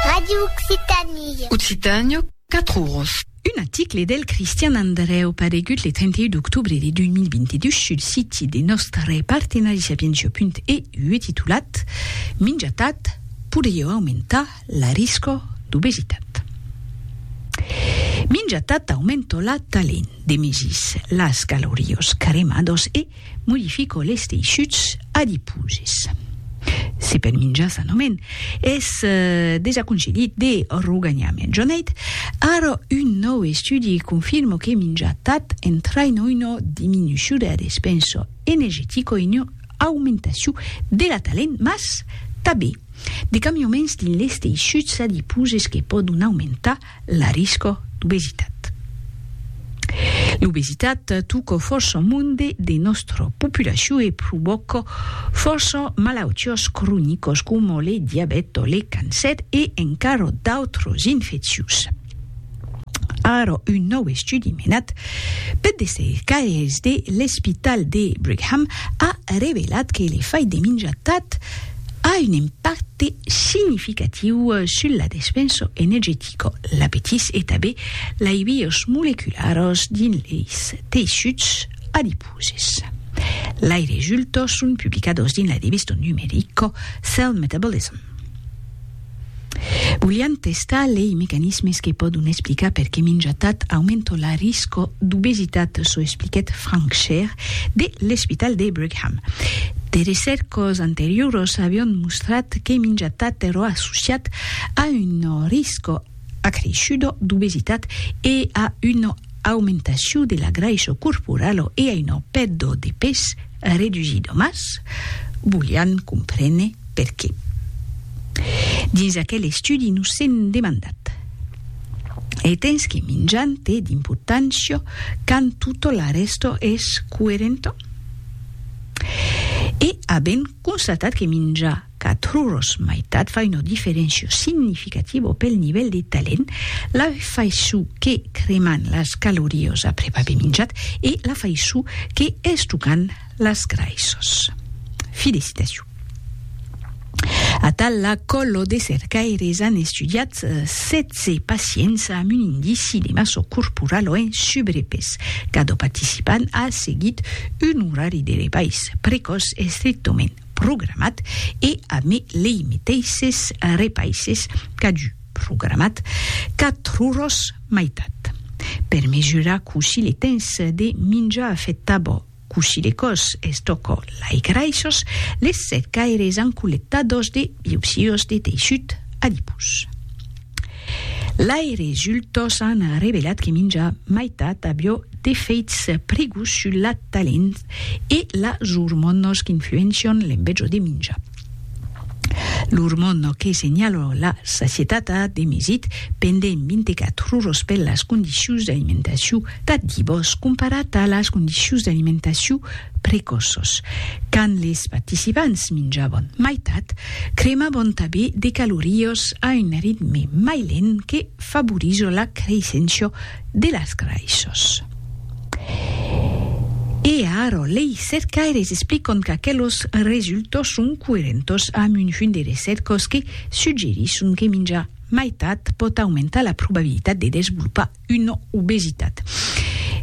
Radio Occitanie. Occitània, 4 oros. Un aticle del Cristian Andrèu paregut le 31 d'octobre de 2022 sul siti de nòstre partenari sapientia.eu titulat Minjatat podrieu aumentar la risca d'obesitat. Minjatat aumenta la talent de mesir las calorías cremadas e. Modifico les teishuts adiposes. Se pel minjar sanament es desaconsellit de roganhar mejorneit, ara un nòu estudi confirmo que minjar tat entraino una diminuciu dera despensa energetica e una aumentaciu dera talent mas tabé de camiaments dins les teishuts adiposes que pòdon aumentar La risco d'obesitat. L'obesitat tuco fòrça monde de nòstra populacion e provòca fòrça malautiás cronicas coma le diabèt o le cancèr e encara d'autras infeccions. Ara un nòu estudi menat per de cercaires de l'Espital de Brigham a revelat que le fai de minjar tard a un impacte significatiu sul la despenso energetica, l'apetís e tabé lai bios molecularos dins leis teissuts adiposes. Lai resultos son publicados dins la devista numerica Cell Metabolism. Volián testar lei mecanismes que pòdon explicar perqué minjar tat aumenta la risco d'obesitat, çò expliquèt Frank Scher de l'Espital de Brigham. De recèrcas anterioras avián mostrat que minjar tat èra associat a una risco acreishuda d'obesitat e a una aumentacion de la graissa corporala e a una pèrda de pes Redusir domas, volián comprene per qué. Dins aquel estudi nos sèm demandat, e tens que minjan te d'importància quand tota la rèsta es coerenta? E avèm constatat que minjar Qu'atroç maitat fa una diferéncia significativa pel nivèl de talent, la faiçon que creman las calorías après aver minjat e la faiçon que estocan las graissas. Fi de citacion. Atal la còlo de cercaires an estudiat 16 pacients amb un indici de massa corporala o en subrepès. Cada participant a seguit un orari de repais precòç estrictament programat e a me lei meteisses repaisses qu'a du programat quatruros maitat per mesurar cossí le tens de minjar afecta bo cossí le còs es tòco lai graissos les set caires an collectados de biopsios de teissut adipós. L'aire jultós an revelat que minja maitat avió d'efeits prigós sul la talent e las ormònos qu'influencion l'embetjo de minja. L'ormòno que senhaló la sacietat a demesit pendent 24 oros per las condicions d'alimentacion tà divós comparat a las condicions d'alimentacion precoços. Quand les participants minjavon maitat, cremavon tabé de caloríos a un ritme mai lent que favorizo la creissencia de las graissos. E aro lei cercaires explicon qu'aquelos resultos son coerentos amb un junt de recercos que suggerisson que minjar maitat pòt aumentar la probabilitat de desvolopar una obesitat.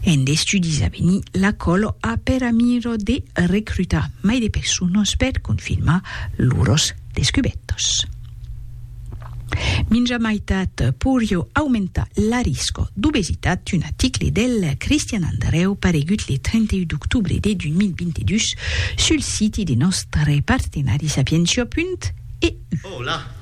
En d'estudis a venir, la còl a per amira de recrutar mai de personas per confirmar lors descubètas. Minjar maitat poiriá aumentar l'arisca d'obesitat, un article del Cristian Andreu paregut le 31 d'octobre de 2022 sul siti de nòstre partenari sapientia.eu.